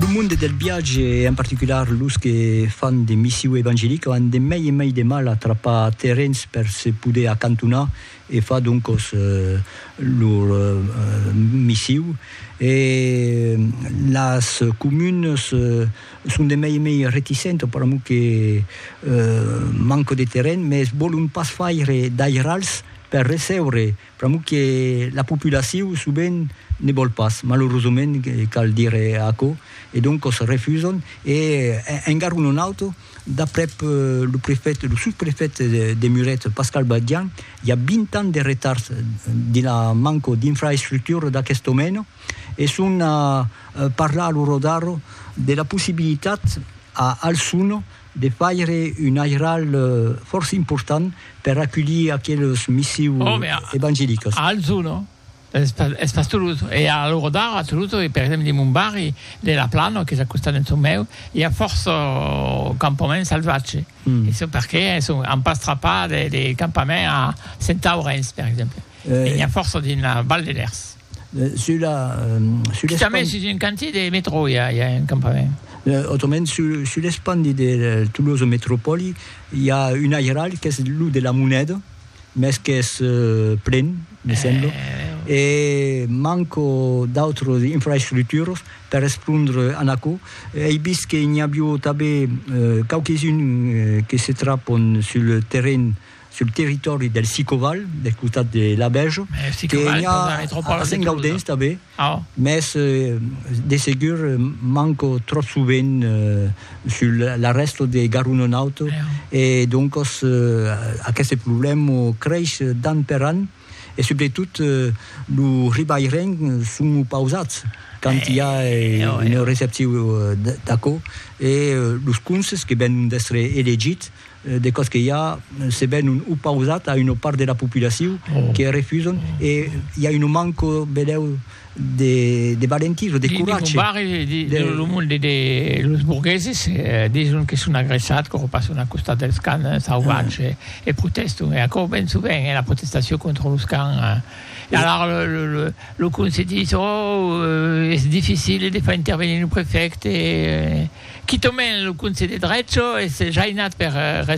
Lo monde del viatge e en particular los que fan de missiu evangelica an de mai e mai de mal a trapar terrens per se poder acantonar e far doncos lor missiu e las comunes son de mai e mai reticentes per amor que manca de terren, mes vòlon pas faire d'airals per recebre Pr'amor que la populacion sovent ne vòl pas, malorosament cal dire aquò, e doncos refusam e en garon un auto, d'aprèp lo prefèt, lo sosprefèt de Muret, Pascal Badian, i a 20 ans de retards dins la manco d'infraestructura d'aquest domèna e son a parlar a lo Rodaro de la possibilitat a Alçon de faire un airal fòrça important per aculhir aqueles missiu evangelicas. A Alzò, no? Es pas Toulouse. E a l'ora d'ara a Toulouse, per exemple dins mon barri de La Plana, qu'es a costat d'en çò meu, i a fòrça campaments salvatges. E çò perqué an pas trapat de campament a Centaurens, per exemple. E n'i a fòrça dins la Val de Lèrs. Sur la... Sur l'espandi... Quitament sus un cantier de metro i a, i a un campament. Autrament, sur, sur l'espandi de Tolosa Metropòli, i a un airalh qu'es lo de la moneda, mès qu'es plen, me sembla, e manco d'autras infraestructuras per respondre a aquò. Ei vist que n'i avió tanben quauques-uns que se trapon sur le terren, sul territòri del Sicoval, del costat de Labèja, que i a a Sengaudens tanben, mès de segur manco tròp sovent sul la rèsta de Garonenaut e doncas aqueste problèma crèish d'an per an e subretot lo ribairenc son opausats quand i a una recepciu d'aquò e los conses que venon d'èstre elegits de còs que i a se ben un opausat a una part de la populacion que refuson e i a un manco benèu de valentis o de coratge. Dins mon barri de lo monde de los burgueses dison que son agressat quò passon a costat dels cans sauvatges e proteston e aquò ben sovent è la protestacion contra los cans. E alara lo conselh didis, Ò, es dificil de far intervenir lo prefècte. Quitament lo conselh de drech es jainat per respondre.